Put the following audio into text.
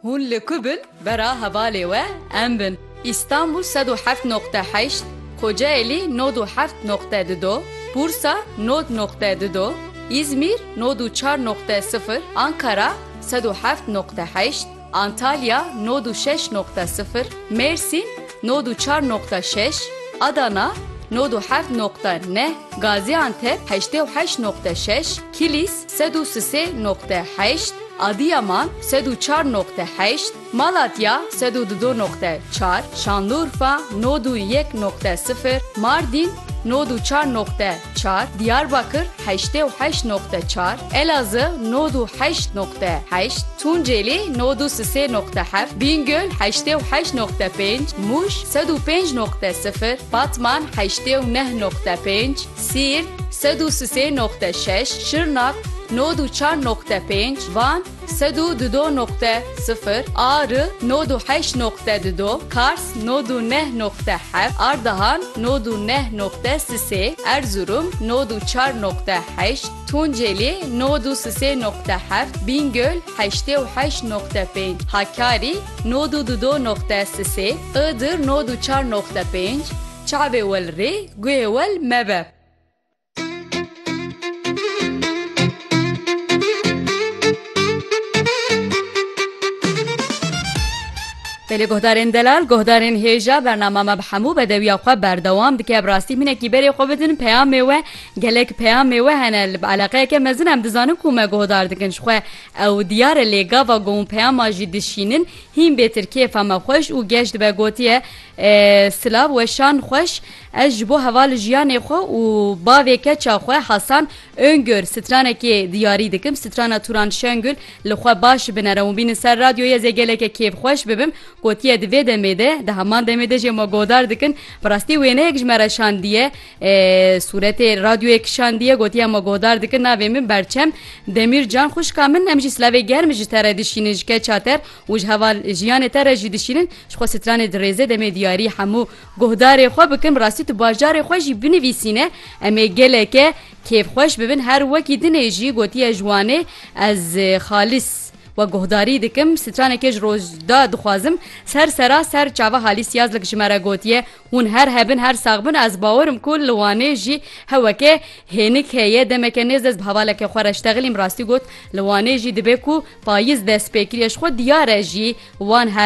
Hûn li ku bin vera hevalê we em bin. Îstanbûl sed û heft noqte heşt, Kocaelî nod û heft noqte di do, Bursa nod noqte di do, Îzmîr nod û çar noqte sifir, Ankara sed û heft noqte heşt, Antalya nod û şeş noqte sifir, Mêrsîn nod û çar noqte şeş, Adana nod û heft noqte neh, Gazîantep heştê û heşt noqte şeş, Kilîs sed û sisê noqte heşt, Adîyaman, sed û çar noqte heşt, Malatya, sed û dido noqte çar, Şanlurfa, nod û yek noqte sifir, Mardîn, nod û çar noqte çar, Diyarbakir, heştê û heşt noqte çar, Elazı, nod û heşt noqte heşt, Tunceli, nod û sisê noqte heft, Bîngöl, heştê û heşt noqte pênc, Mûş, sed û pênc noqte sifir, Batman, heştê û neh noqte pênc, Siirt, sed û sisê noqte şeş, Şirnak, nod û çar noqte pênc, Van, sed û dudo noqte sifir, Ari, nod û heşt noqte dudo, Kars, nod û neh noqte heft, Ardahan, nod û neh noqte sisê, Erzurum, nod û çar noqte heşt, Tunceli, nod û sisê noqte heft, Bîngöl, heştê û heşt noqte pênc, Hakkari, nod û dudo noqte sisê, Iğdır, nod û çar noqte pênc, Çavê wel rê, guhê wel mebe. Belê guhdarên delal, guhdarên hêja bernama me bi hemû bedewiya xwe berdewam dike bi rastî hinekî berê xwe bidin peyamê we gelek peyamê we hene li bi eleqeyeke mezin em dizanin ku me guhdar dikin ji xwe ew diyar e lê gava got peyama jî dişînin hîn bê tir kêfa me xweş û geş dibe gotiye Silav weşan xweş Ez ji bo heval li jiyanê xwe û bavê keça xwe Hasan Öngör stranekê diyarî dikim. Strana Turan Şengül li xwe baş binere û bînin ser radyoyê ez ê gelekê kêfxweş bibim. Gotiye di vê demê de di heman demê de jê ma godar dikin. Bi rastî wêneyek ji me re şandiye. Sûretê radyoyê kişandiye gotiye ma godar dikin navê min Berçem Demîrcan. Xwişka min em jî silavê germ ji te re dişînin ji keça te re. Û ji heval jiyanê te re jî dişînin, ji xwe stranê dirêze demê diyarî hemû guhdarê xwe bikin, bi rastî tu bajarê xwe jî binivîsîne, em ê geleke kêfxweş bibin, her wekî dinê jî gotiye ji Wanê ez xalîs we guhdarî dikim, stranekê ji Rojda dixwazim, ser sera ser çava Halîs Yazlik ji me re gotiye, Hûn her hebin her sax bin ez bawer im ku li Wanê jî heweke hênik heye demeke nêz ez bi hevaleke xwe re ji texilîm rastî got li Wanê jî dibe ku payiz destpêkiriye ji xwe diyar e jî wan her